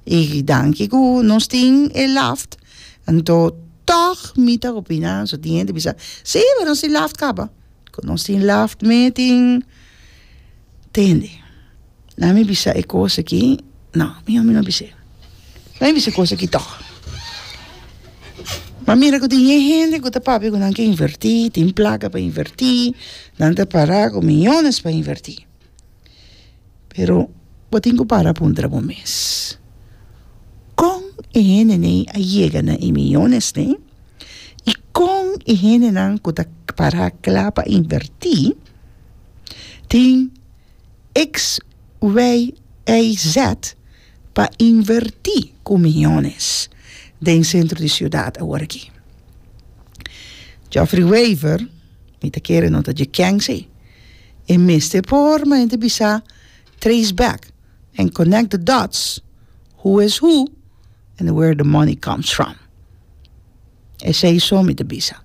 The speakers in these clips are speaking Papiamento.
y danki cu nos tin e laft anto toch mi ta opina so tin hende bisa si pero nos tin laft caba cu nos tin laft me tin tende na mi bisa e cos aki no mi hombre no bis'e na mi bisa e cos aki toch ma mira cu tin e hende cu ta papia cu nan ke inverti tin placa pa inverti nan ta para cu millones pa inverti Pero bo tin ku para puntra bo mes, kon e hendenan a yega na e miyonesnan i kon e hendenan ku ta para kla pa invertí tin eks, wei, ei, zèt pa invertí ku miyones den sentro di siudat awor aki? Jòfri Weiver, mi ta kere no ta dje kèn si. E mester por ma hende bisa trace back and connect the dots, who is who and where the money comes from. Esei so mi ta bisa.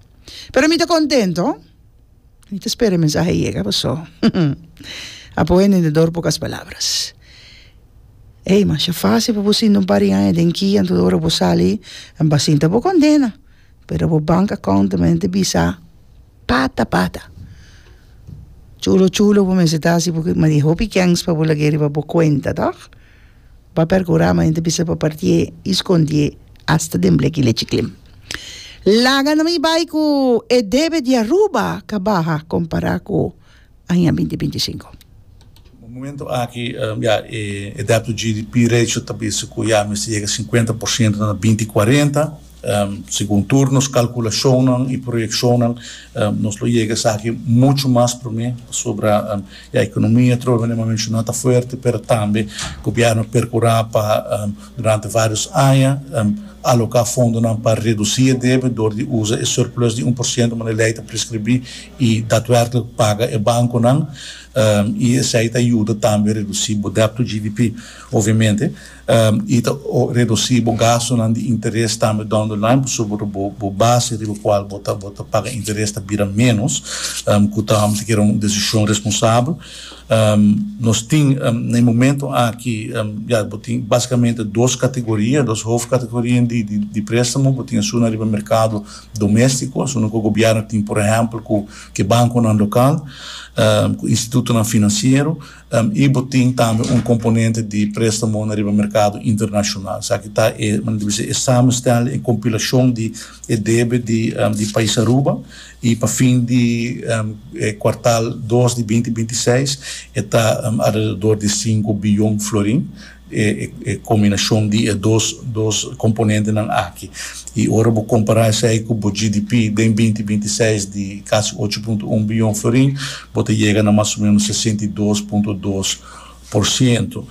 Pero mi ta contento, mi ta spera e mensahe yega paso apo hende den dorp boca es palabras. Ey, masha facil pa bo sinti un par di aña den kia anto ora bo sali, bo a sinti abo condena, pero bo bank account ta mente bisa. Pata pata chulo chulo bo mester ta asi purke madi hopi kens pa bo lag'e riba bo kuenta tòg ba perkura madi ta bisa pa parti'e i skondi'e asta den bleki lechi klin laga na mi bai ku e debe di Aruba kabaha kompará ku aña binti binti sinku. Na momentu aki ya e dèbt to GDP ratio ta bisa ku ya mester yega sinkuenta por siento na binti kuarenta. Segun tur nos kalkulashonnan i proyekshonnan nos lo yega esaki muchu mas promé pasobra ya ekonomia atrò mene bo a menshoná ta fuerte pero tambe gobièrnu a perkurá pa durante vários aña aloká fondonan pa redusí e debe dor di usa e surplus di un por siento manera e lei ta preskribí. I datwerklik paga e bankunan, i esei ta yuda tambe redusí bo debt to GDP, obviamente, i ta redusí bo gastunan di interes tambe down the line, pasobra bo base riba kual bo ta bo ta paga interes ta bira ménos, ku ta amo ta kere un desishon responsabel. Nos tin na e momentu aki, ya, bo tin basikamente dos kategoria, dos hofkategorianan di préstamo, bo tin esuna riba merkado doméstiko asina ku gobièrnu tin por ehèmpel ku ke bankonan lokal ku institutonan finansiero i bo tin tambe un komponente di préstamo na riba merkado internashonal esaki ta e men debí bisa e samenstel e kompilashon di e debe di di pais Aruba i pa fin di e kuartal dos di binti binti seis e ta alrededor di sinku biyon florin e combinacion di e dos dos componentenan aki. Y ora bo compara esey cu bo GDP den binti binti seis di casi ocho punto un billon florin, bo ta yega na mas o menos sesenta y dos punto dos por ciento.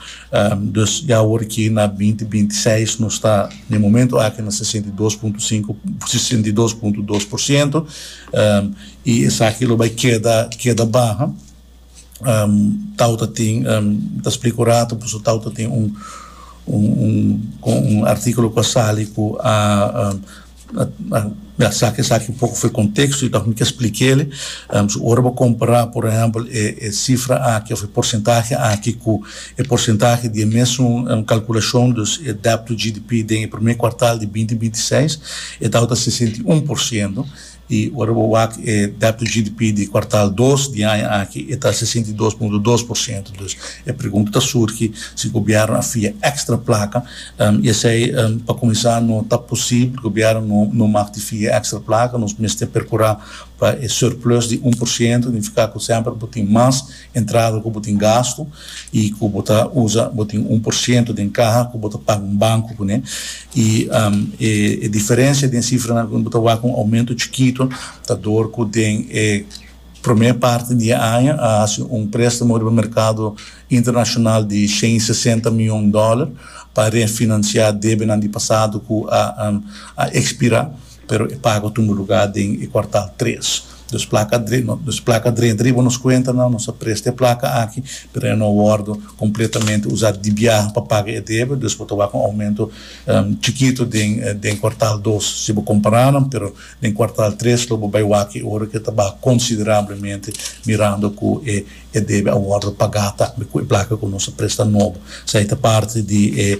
Dus ya awor aki na binti binti seis nos ta na e momento aki na sesenta y dos punto cinco, sesenta y dos punto dos por ciento y esaki lo bay keda keda baha. tau ta tin ta splica un ratu pasobra tau ta tin un un articulo cu a sali cu a a saki esaki un poco fuer contexto y ta hopi ke splik'ele so ora bo compara por ehempel e cifra aki of e porcentahe aki cu e porcentahe di e mesun calculacion dus e debt to GDP den e prome cuartal di binti binti seis e tau ta sesenta i un por ciento I ora bo wak e dèpto GDP di kuartal dos di aña aki e ta sesenta i dos punto dos por siento. Dus e pregunta ta surgi si gobièrnu a fia èkstra plaka i esei pa kuminsá no ta posibel, gobièrnu no mag di fia èkstra plaka, nos mester perkurá pa e surplus di un por siento, nifiká ku semper bo tin mas. Entrada ku bo tin gastu i ku bo ta usa, bo tin un por siento den kaha ku bo ta paga un banku kuné i e diferensia den sifranan kuné bo ta wak un oumento chikito ta dor ku den e promé parti di e aña a hasi un préstamo riba merkado internashonal di shen i sesenta mion dòler pa refinansiá debenan di pasado ku a ekspirá. pero e pago tumba lugá den e kuartal tres. Nos plaka dre nos plaka drenta riba nos kuentanan, nos a presta e plaka aki, pero e no a wòrdu kompletamente usá di biaha pa paga e debe, dus bo ta wak un oumento chikitu den den kuartal dos si bo kompará nan, pero den kuartal tres lo bo bai wak e ora ke ta baha konsiderablemente mirando ku e e debe a wòrdu pagá ta ku e plaka ku nos a presta nobo. Esei ta parti di e.